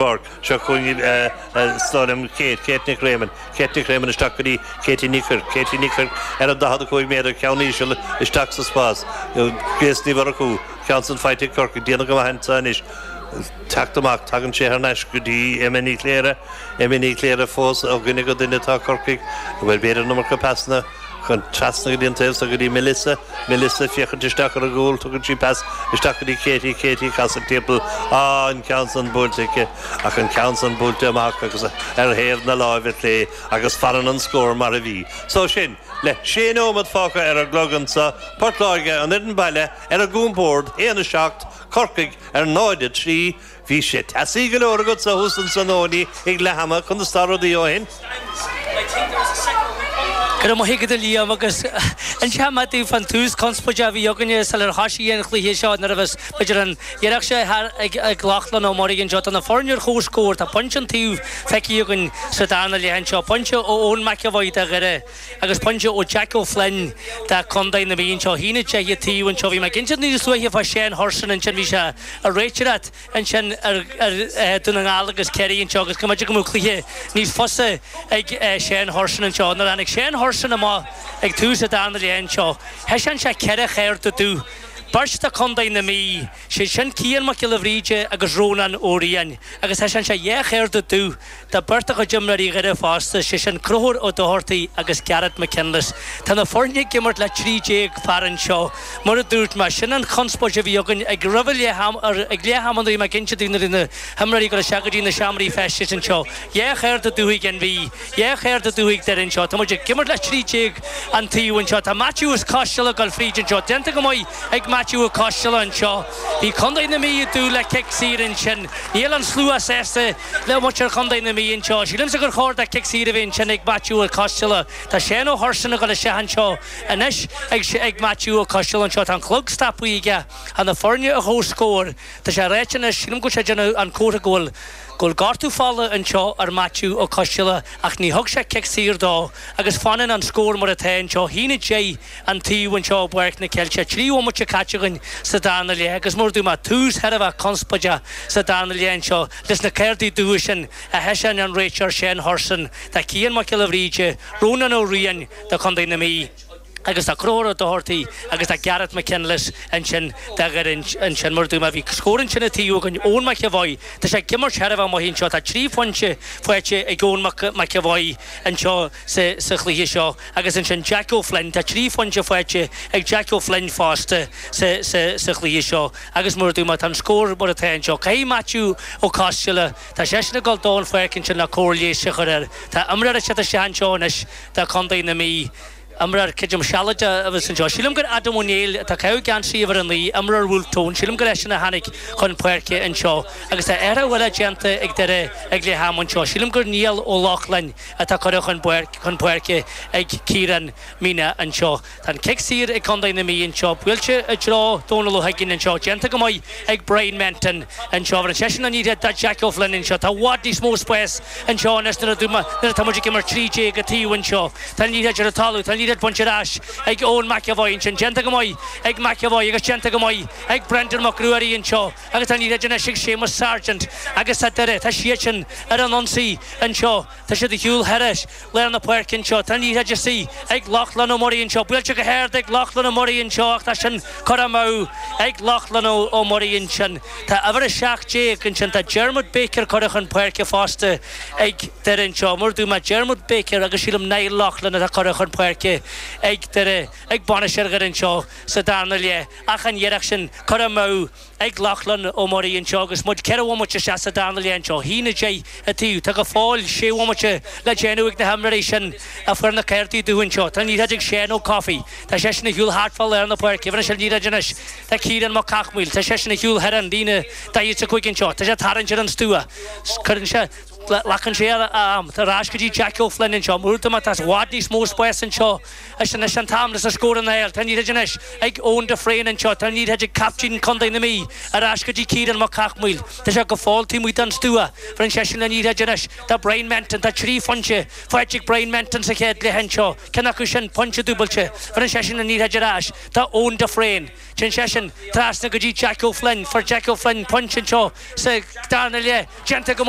Bord. Seo chugainn iad, slán lem Kate, Kate Nic Réamoinn, Kate Nic Réamoinn isteach go dtí Katie Ní Chuirc, Katie Ní Chuirc ar an 45 méadar, ceann íseal isteach sa spás. Grace Ní Mhurchú, ceann san faighte ag Corcaigh, déanamh go maith anseo anois teacht amach, tagann sé thar n-ais go dtí Emma Ní Chléire, Emma Ní Chléire fós ó dhuine go duine, tá Corcaigh, bhuel b'fhéidir an iomarca pasanna, Ceann trasna go dtí an taobh so go dtí Melissa. Melissa, féachaint isteach ar an gcúl, tugann sí pas isteach go dtí Katie. Katie, ag casadh timpeall. Á, an ceann san buailte aici. Ach an ceann san buailte amach agus ar thaobh na láimhe clé agus fanann an scór mar a bhí. So sin, le sé nóiméad fágtha ar an gclog anseo, Port Láirge an fhoireann baile ar a gcompord, 1, 7, Corcaigh ar 0, 3. Bhí sé teasaí go leor agatsa thuas ansan Owenie ag leath ama conas tá rudaí ó shin. Go raibh maith agat a Liam agus inseoidh mé daoibh fán tús conspóideach a bhí againne sular thoisigh an cluiche seo nuair a bheas b'fhéidir an iarracht seo thart ag ag Lochlainn Ó Muirí anseo tá na foirne ar chomhscór tá pointe an taobh feicthe againn sa darna leath anseo pointe ó Eoin McEvoy do Dhoire agus pointe ó Jack Ó Floinn do Chontae na Mí anseo. A haon a deich an taobh anseo. Bhí mé ag caint níos luaithe fá Séan Hurson ansin. Bhí sé ag réiteoireacht ansin ar Dún na nGall agus Ciarraí anseo agus go mbeidh go mbeadh cluiche níos fusa ag Séan Hurson anseo. Nuair tháinig Séan Hurson amach ag tús an darna leath anseo, thaiseáin sé ceithre chárta dubh, beirt do Chontae na Mí. 'Siad sin Cian Mac Giolla Bhríde agus Rónán Ó Riain agus thaiseáin sé dhá chárta dubh do bheirt de chuid imreoirí Dhoire fosta, 'sé sin Conchúr Ó Dochartaigh agus Gareth McKinless. Tá na foirne ag imirt le trí déag fear anseo, mar a dúirt mé. Sin an chonspóid a bhí againn ag roimh ag leath ama nuair a bhí mé ag inse daoibh nuair a bhí na himreoirí ag gabháil isteach go dtí na seomraí feistis anseo dhá chárta dubh ag an Mhí. Dhá chárta dubh ag Doire anseo. Tá muid ag imirt le trí déag an taobh anseo. Tá Maitiú Ó Coisteala ag dul fríd anseo. Déanta go maith ag Maitiú Ó Coisteala anseo. Bhí Contae na Mí ag dúil le cic saor ansin. Níl an slua sásta le muintir Chontae na Mí anseo. Sílimse gur chóir dó cic saor a bheith ansin ag Maitiú Ó Coisteala. Tá Séan Ó Hurson ag dul isteach anseo anois ag Maitiú Ó Coisteala anseo. Tá an clog stoptha aige. Tá na foirne ar chomhscór. Tá sé ag ráit anois, sílim go bhfuil sé ag déanamh an comhartha go bhfuil. Go bhfuil gortú fola anseo ar Maitiú Ó Coisteala ach ní thug sé cic saor dó agus fanann an scór mar atá anseo. A haon a deich an taobh anseo i bPáirc na gCeilteach. Trí bhomaite caite againn sa darna leath agus mar a dúirt mé tús thar a bheith conspóideach sa darna leath anseo leis na cártaí dubha sin a thaiseáin an réiteoir Séan Hurson do Chian Mac Giolla Bhríde, Rónán Ó Riain do Chontae na Mí. Agus tá Conchúr Doherty agus tá Gareth McKinless ansin dá gcuir ansin. Mar a dúirt mé, bhí scór ansin ag taobhú againn. Eoin McEvoy, tá sé ag imirt sárchluiche anseo. Tá trí phointe faighte ag Eoin McEvoy anseo sa chluiche seo. Agus ansin Jack O'Flynn, tá trí phointe faighte ag Jack O'Flynn fosta sa chluiche seo. Agus mar a dúirt mé, tá an scór mar atá anseo. Caithfidh Matthew Ó Costello, tá seisean ag dul den pháirc ansin le cóir leighis a chur air. Tá imreoir ag teacht isteach anseo anois do chontae na Mí. Imreoir creidim sealadach a bheas anseo. Sílim gur Adam Ó Néill, atá ag caitheamh geansaí uimhir a naoi, imreoir Bhulf Tón, sílim gur eisean a tháinig chun páirce anseo agus tá athrú eile déanta ag Doire ag leath ama anseo. Sílim gur Niall Ó Lochlainn atá curtha chun chun páirce ag Ciarán Meenagh anseo. Tá an cic saor ag Contae na Mí anseo. Buailte i dtreo Dónal Ó hUiginn anseo. Déanta go maith. ag Brian Menton anseo. Bheir seisean an liathróid do Jack Ó Floinn anseo. Tá i bhfad níos mó spáis anseo anois nuair atá muid ag imirt trí déag an taobh anseo. Tá an liathróid ar an talamh, tá an liathróid bainte ar ais ag Eoin McEvoy ansin. Déanta go maith ag McEvoy agus déanta go maith ag Brendan Mac Ruairí anseo agus tá an liathróid anois ag Séamus Sargent agus tá Doire, tá siadsan ar an ionsaí anseo. Tá siad ag siúl thríd lár na páirce anseo. Tá an liathróid anois ag Lochlainn Ó Muirí anseo. Buailte go hard ag Lochlainn Ó Muirí anseo ach tá sin curtha amú ag Lochlainn Ó Muirí ansin. Tá uimhir 17 ansin. Tá Diarmuid Baker curtha chun páirce fosta ag Doire anseo. Mar a dúirt mé Diarmuid Baker agus sílim Niall Lochlainn atá curtha chun páirce ag Doire ag bainisteoir Dhoire anseo sa darna leath ach an iarracht sin curtha amú ag Lochlann Ó Muirí anseo agus muid ceithre bhomaite isteach sa darna leath anseo. Shín a deich a taobh. Tá go fóill sé bhomaite le déanamh ag na himreoirí sin a fuair na cártaí dubha anseo. Tá an liathróid ag Seán Ó Cofaigh. Tá seisean ag siúl thart fá lár na páirce. Bheir sé an liathróid anois do Ciarán Mac Cathmhaoil. Tá seisean ag siúl thar an líne daichead is a cúig anseo. Tá sé ag tarraingt ar an stua. Cuireann sé Glacann sé ar a am. Ar ais go dtí Jack Ó Floinn anseo. Mar a dúirt mé tá i bhfad níos mó spáis anseo. Is anois an t-am le scóranna a fháil. Tá an liathróid anois ag Eoin de Fréin anseo, tá an liathróid ag caiptín chontae na Mí, ar ais go dtí Ciarán Mac Cathmhaoil. Tá sé go fóill taobh amuigh den stua. Bheir seisean an liathróid anois do Brian Menton. Tá trí phointe faighte ag Brian Menton sa chéad leath anseo, ceann acu sin pointe dúbailte. Bheir seisean an liathróid ar ais do Eoin de Fréin. Téann seisean trasna go dtí Jack Ó Floinn. Fuair Jack Ó Floinn pointe anseo sa darna leath. Déanta go maith.